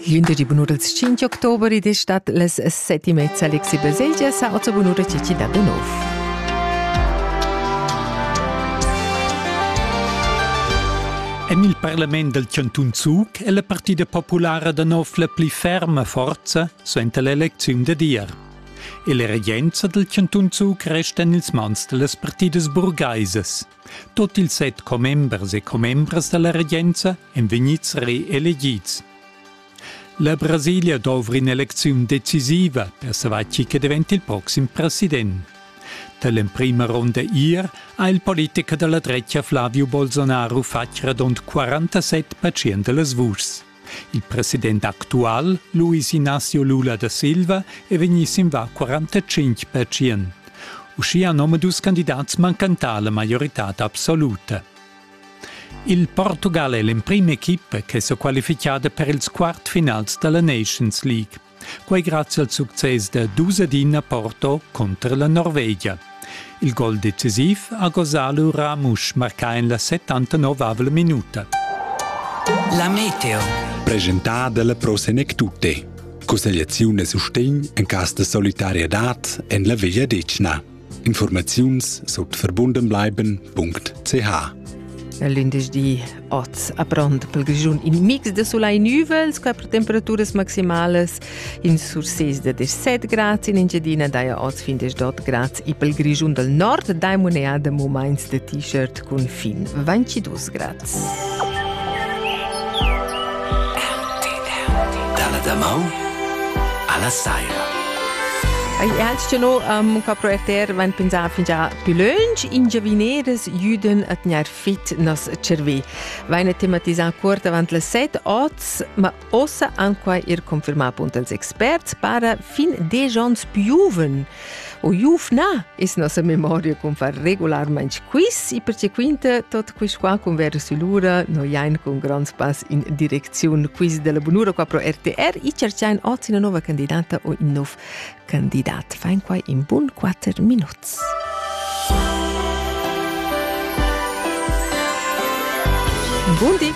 Glindesdi bunura ils 5 october ed è stat las set e mezza. Alexi Baselgia sa ozza bunura Cici da Benov. En il parlament del Cantun Zug è la partida populara da nov la pli ferma forza suenter l'elecziun da dir. E la regenza del Cantun Zug resta en ils mans dellas partidas burgaisas. Tut ils set commembers e commembras dalla regenza èn vegnids reelegids. La Brasilia dovra in'elecziun decisiva per savoir chi che diventa il proxim president. Dall'emprima ronda ier ha il politicher dalla dretga Flavio Bolsonaro fatg radund 47% dellas vuschs. Il president actual, Luis Inácio Lula da Silva, è vegnì sin va 45 percient. Uschia nomadus candidats mancantà la maioritad absoluta. Il Portugal è l'emprim equipa che s'è qualifichada per ils quartfinals dalla Nations League. Quei grazie al success da dus ed ina Porto contro la Norvegia. Il gol decisiv ha gosà lura Ramusch marcà en la 79 minuta. La meteo. Presentada dalla Pro Senectute. Cussegliaziun e sustegn en cas de solidarietad en la Veglia Decna. Informaziuns sut verbundenbleiben.ch L'indesch oz a pront pel Grischun in mix de solai nüvel sco per temperaturas maximales in sur 6 de 17 grad in Engiadina daja oz fin 18 grad e pel Grischun dal nord dai moneda momains de t-shirt cun fin 22 grad. Dalla damaun alla saira. Ei altgino um ca proeter vain pensà fingià più lönch in giavineres juden a tgnair fit nos cervè. Vaine tematisà cuort avant las 7 oz, ma Ossa han quai er confermà punt als experts para fin desch onns piuven. O iuf na es nossa memoria cun far regularmaing quiz e perche quinta tot quist qua cun verso lura no jain cun grands pass in direcziun quiz della bunura qua pro RTR e cerciain oz una nova candidata o in nov candidat. Fain quai in bun quatter minuts. Buondì!